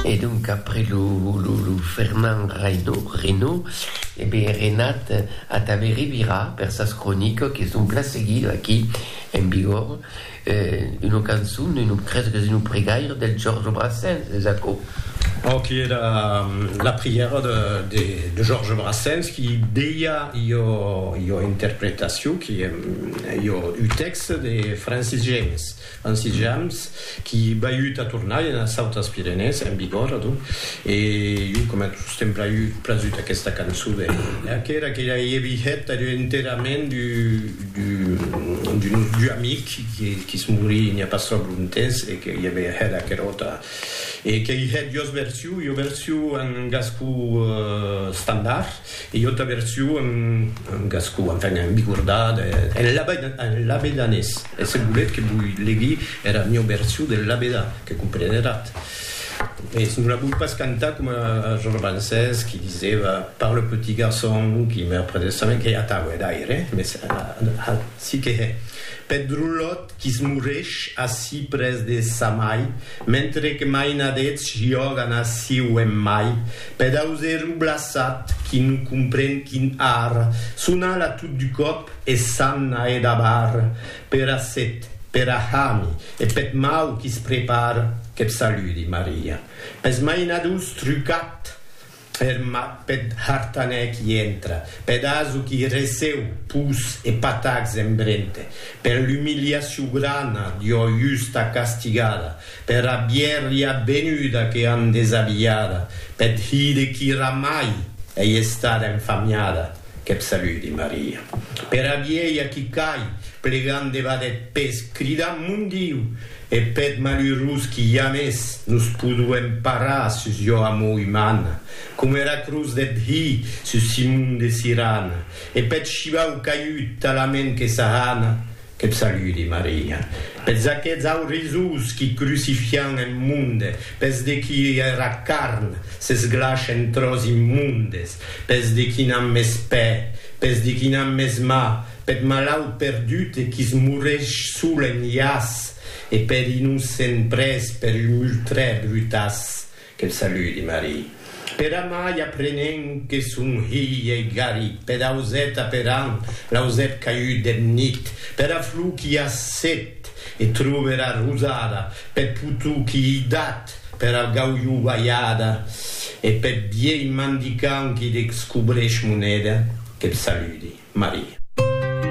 E donc après lo Fernand Reynaud, e be Renat Atave Rivira per sas croniques que son plan seguido aquí en Bigorre, una cançon, creso qu'es una pregaire del Georges Brassens, es aquò? Pro qui era la prièra de Georges Brassens qui deia ua interpretacion qui ua un texte de Francis James. En sitjams qui baiut a tornar ena Sautas Pirenèes, en vigor, adonc, e jo coma tos t'èm praiut prasut aquesta cançon de qu'era que ja ei vihet adonc enterament d'un nostre amic qui es morí n'i a pas tròp lontes e que i avè hèt aquera ota e qu'ei hèt jos version, jo version en gascon standard. E jo t'avertio en gascon, enfin en bicordat, en labedanés, e se voletz que voi legui era mieu version del labedan, que compreneratz. Mès non la voi pas cantar coma Georges Brancés qui diseva par le petit garçon qui meurt près de sa mère, que atau hè d'aire, mès ací que hè, peth drolhot qui's moresh ací près de sa mai, mentre que maina d'eths jògan aciu en mai, Pedausè rublassat qui non compren quin ar son ala tot du còp e s'an n'a e dabar per a set, per a hami e peth mau qui se prepar qu'eth saludi, Maria. Pes mainadors trucat er mat peth hartanè qui entra, peth aso qui receu pus e patacs en brente, per l'umiliacion grana d'ua justa castigada, Per a bièria benuda que an desabilhada, peth hide qui ramai ei estada enfamiada, que'p saludi Maria. Per a vielha qui cai, plegant debat deth pes, cridant Mon Diu! e peth malurós qui jamès nos podo emparar sus jo amor umana, com era cruz deth Hi sus Simon de Sirana, e peth shivau caihut talament que s'ahana, Te saludi, Maria, pels aqueths aurizous qui crucifian en monde, pels de qui era carn s'esglaç en tròç immondes, pels de qui n'an mès pè, pels de qui n'an mès mà, peth malaut perdut e qui's morreix sol en llaç, e per innocent pres per un multrè brutaç. Quel saludi, Marie. Per amai aprenent que son hilh ei garit per ausèt aperant l'ausèt caiut deth nit pera flor qui a set e tròbe era rosada peth potou qui ei dat pera gaulhou balhada e peth vielh mandicant qui descobreix moneda. Quel saludi, Marie.